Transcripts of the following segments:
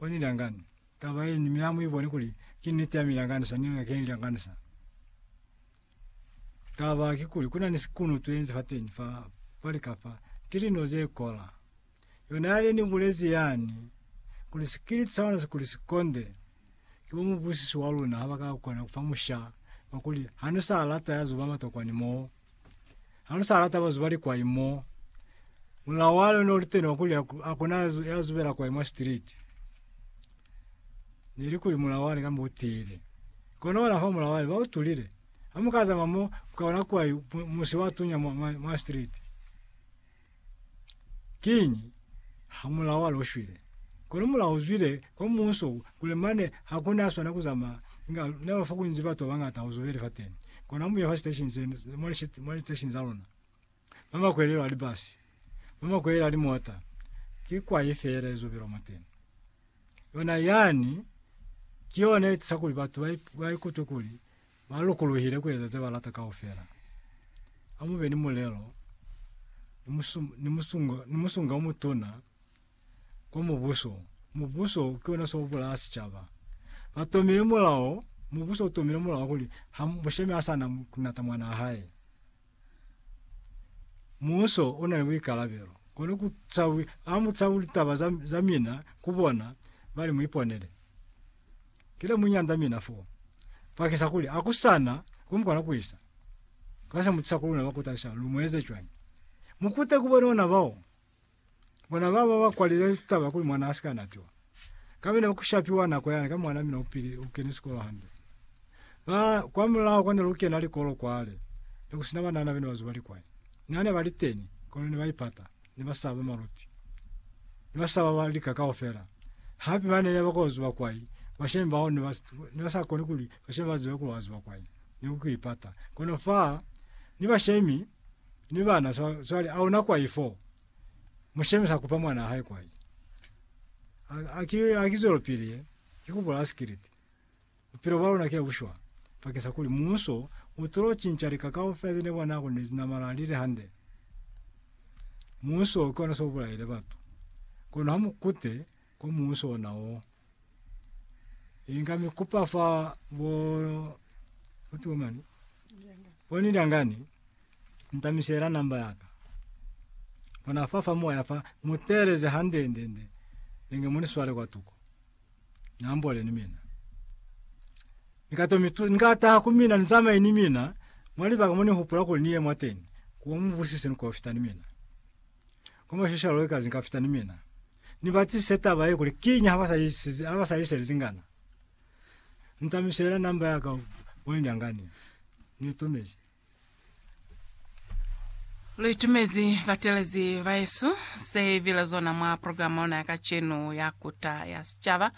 Koni liyangani taba yeni mi ha mu iboni kuli ki niti ya mi lyanganisa ni nga keni lyanganisa taba ki kuli kuna ni sikuno tu enzi fa teni fa pali kapa ki lino ze kola yona yale ni bulezi yani kuli sikiliti sa ona si kuli sikonde ki bo mubusisi wa luna ha ba ka kona kufa musha wa kuli ha ni sa lata ya zuba matokwani mo Ha lu sa lata bazubali kwai mo, mulao wa lona uli tena wa kuli hakuna ya zubela kwai mwa street. Nili kuli mulao wale kamba utile. Kono wana fa mulao wale ba utulile. Ha muka zama mo, mukaona kwai musi wa tunya mwa street. Kiñi, hamulaho ha lwo shwile. Kono mulaho u zwile kwa muuso kuli mane ha ku na swana ku zamaya, inga ne ba fa kunzi batu ba bañata ho zobeli fateni. Kono ha mu ya fa siteshini se ne, mwa li, mwa liteshini za luna, mwa makwelelo a libasi, mwa makwelelo a limota, ki kwai feela ye zobelwa mwateni. Yona yani, ki yona ye tisa kuli batu ba, ba ikutwe kuli Ba lokolohile ku eza ze ba lata kaufela. A mu be ni mulelo ni musunga o mutuna kwa mubuso. Mubuso ki ona se u bulaya sicaba. Ba tomile mulao, mubuso u tomile mulao kuli ha mushemi ha sa na ku nata mwanaa hae. Muuso u na ni buikalabelo kuli ku cawi, a mu cawi litaba za, za mina ku bona ba li mu iponele. Ki le mu nyanda mina foo, bakisa kuli a ku sa na ku mu kona ku isa. Ka se mu tisa ku luna ba ku talusa lu mu eze cwañi? Mu kute ku bona ona bao. Bona baba bakwalile taba kuli mwana asika natiwa. Kamene ukushapiwa nako yana ka mwana mina upili ukene sikolo hande. Ba kwa mulao kone lukena likolo kwale. Nekusina banana bene bazuba likwai. Nane bali teni kolo ne baipata ne basaba maluti. Ne basaba ba lika kaufela. Hape bane ne bako zuba kwai bashemi bao ne bas ne basa koni kuli bashemi bazibe kuli wazuba kwai. Ne ukuipata. Kono fa ni bashemi Ni bana so, swali auna kwai fo. Mushemi sa kupa mwana hae kwai. Aki aki zolo pili ye. Kikubula asikiriti. Upilo bwa lona kia bushwa. Pakisa kuli muso utulo cinca lika kaufela zine bona kuli nezinamala lile hande. Muso kona so bulaile batu. Kono hamukute ko muso ona o. Inga mi kupa fa bo kuti bo mani boni ndangani ntamisela namba yaka bona fa fa moya fa muteleze hande nde nde ninge muni swale kwa tuko nambole ni mina nikato mitu ngata ku mina nzamaye ni mina mwali baka muni hupula kuli niye mwateni kuwa mubusise ni kofita ni mina Kono shisho yalo ikazi nka fita ni mina. Ni ba tsise taba ye kuli kiñi ha ba sa isize, ha ba sa ise lizingana. Nta misela number ya ka wa nyangani. Ni itumezi. Lu itumezi batelezi ba Yesu. Se bile zona mwa program ya ona ya kacenu ya Kuta ya Sicaba.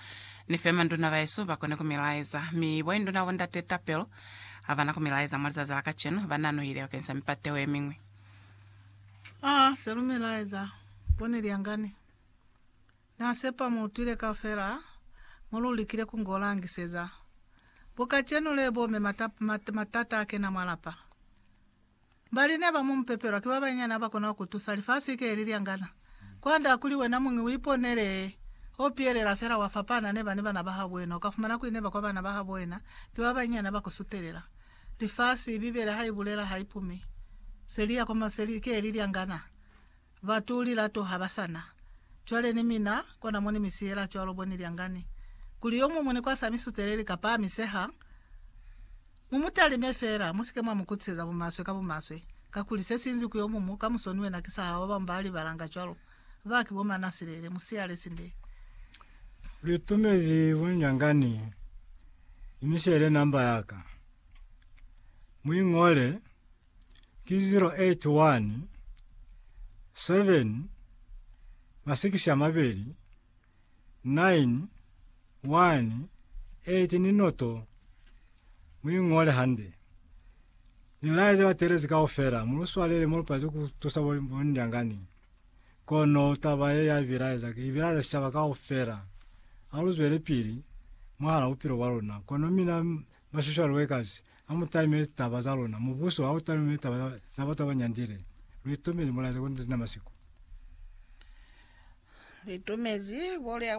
Ni fe manduna ba Yesu ba kone ku mi laeza. Mi bo induna bo ndate tapelo ha bana ku mi laeza mwa lizazi la kacenu. Ba nanuhile bakeng sa mipateho ye miñwi. A se lumela eza bone lyangani. Na sepa mu utwile kaufela mo lu likile ku ngo langiseza. Bo kacenu le bo me mata, matata a kena mwa lapa. Bali ne ba mu mu pepelwa ki ba bayinyani ha ba kona ku tusa. Lifasi ki le li lyangana. Kwand'a kuli wena muñi uiponele ho pielela fela wa fapana neba ni bana bahabo wena uka fumana kuli neba kwa bana bahabo wena ki ba banyinyana ba ku sutelela. Lifasi, Bibele ha i bulela ha i pumi. Se li ya kwa ma, se li ke li lyangana. Batu lilato ha ba sa na. Cwale ni mina, kona mo ni mi siyela cwalo bo ni lyangani. Kuli yo muñwi ni kwasa mi suteleli kapa a mi seha, Mu mu talime feela, mu si ke mwa mu kutiseza bumaswe ka bumaswe, kakuli se sinzi ku yo mumu, ka musoni wena ki sa hao, ba bañwi ba libalanga cwalo, ba ki bo manasilele. Mu siyale sinde. Lu tumezi bunyangani, imisele namba ya ka. Mu i ñole, ki 081 7 masikisi a mabeli 9, 1, 8 ni noto, mu i ngole hande. Ni laeze batelezi kaufela, mu lu swalele mo lu palezi ku tusa bo, bo Ndyangani. Kono taba ye ya bilaeza, ki bilaeza sicaba kaufela. A lu zwele pili mwahala bupilo bwa luna. Kono mina Maswishaluekazi a mu talimele litaba za luna. Mubuso ha u talume litaba za, za batu ba ba nyandile. Lu itumezi mulaeza kuli ni Damasiko. Lu itumezi bo lya